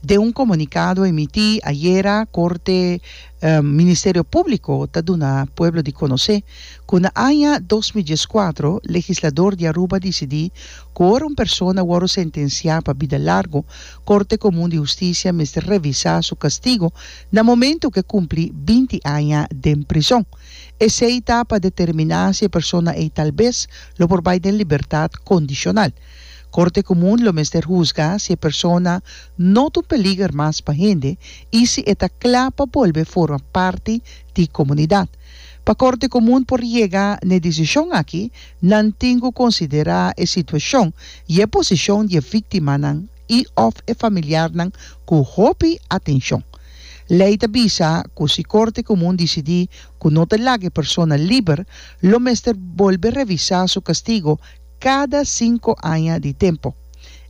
Den un comunicado emití ayera Corte Ministerio Público ta duna pueblo di conoce cu na aña dos mil diescuatro legislador di Aruba dicidí cu ora un persona wòrdu sentenciá pa bida largu Corte Comun di Husticia mester revisa su castigo na momento cu e cumpli binti aña den prizon. Esei ta pa determiná si e persona ei tal bes lo por bai den libertad condicional. Corte Comun lo mester huzga si e persona no ta un peliger mas pa hende y si e ta cla pa bolbe forma parti di comunidad. Pa Corte Comun por yega n'e decision aki, nan tin cu considera e situacion y e posicion di e victimanan y of e familiarnan cu hopi atencion. Ley ta bisa cu si Corte Comun dicidi cu no ta laga e persona liber, lo mester bolbe revisa su castigo, cada cinco aña di tempo.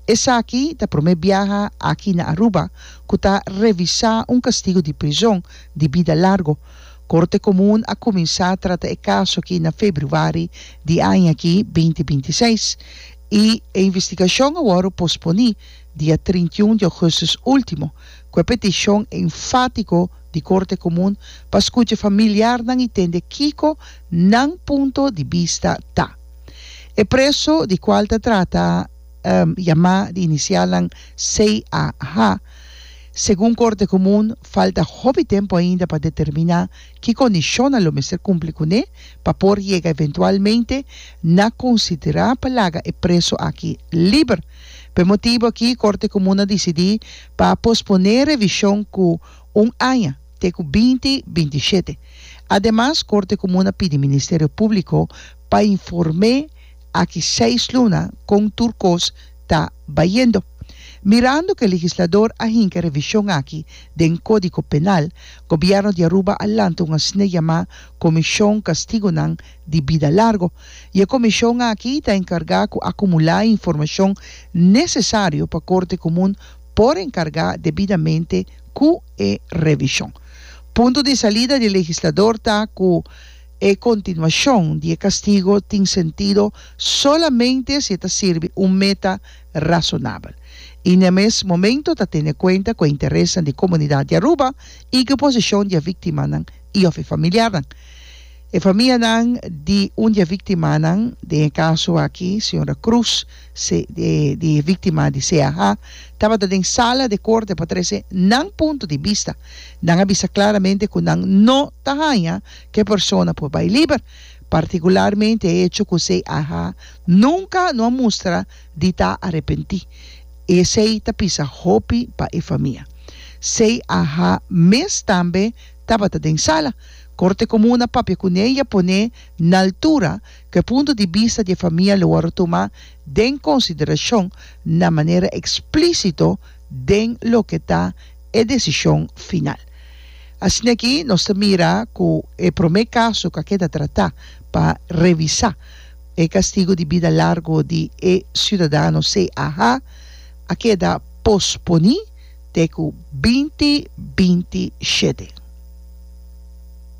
Esaki ta prome biaha aki na Aruba cu ta revisa un castigo di prizon di bida largo. Corte Comun a cuminsa trata e caso aki na februari di aña aki binti binti seis y e investigacion a wor posponi dia trinta i un di augustus ultimo cu e peticion enfatico di Corte Comun pa scucha familiarnan y tende kico nan punto di bista ta. E preso di cual ta trata yama di inicialnan CAH, segun Corte Comun falta hopi tempo ainda pa determina ki condicionnan lo mester cumpli cu ne pa por yega eventualmente na considera pa laga e preso aki liber. P'e motibo aki Corte Comun a dicidi pa pospone revision cu un aña, te cu binti binti shete. Ademas Corte Comun a pidi Ministerio Publico Pa inform'é aki seis luna kon tur kos ta bayendo. Mirando ku e legislador a hinka e revishon aki den Kódigo Penal, Gobièrnu di Aruba a lanta un asina yamá Komishon Kastigonan di Bida Largu, i e komishon aki ta enkargá ku akumulá e informashon nesesario pa Korte Komun por enkargá debidamente ku e revishon. Punto di salida di e legislador ta ku E kontinuashon di e kastigo tin sentido solamente si e ta sirbi un meta rasonabel i na e mes momento ta tene kuenta ku e interesnan di komunidat di Aruba i ku e posishon di e viktimanan i òf e familiarnan. E famianan di un di e viktimanan, den e kaso aki señora Cruz, se di e viktima di CAH, tabata den sala di e korte pa trese nan punto di bista. Nan a bisa klaramente ku nan no ta haña Ke persona por bai liber, partikularmente e echo ku esei a ha nunka no a mustra di ta arepentí. Esei ta pisa hopi pa e famia. Sei a ha mes tambe tabata den sala. Korte Komun a papia kuné i a poné na altura ku e punto di bista di e famia lo wòrdu tumá den konsiderashon na manera eksplísito den loke ta e desishon final. Asina aki nos ta mira ku e promé kaso ku a keda tratá pa revisá e kastigu di bida largu di e siudadano CAH a keda posponí te ku binti binti shete.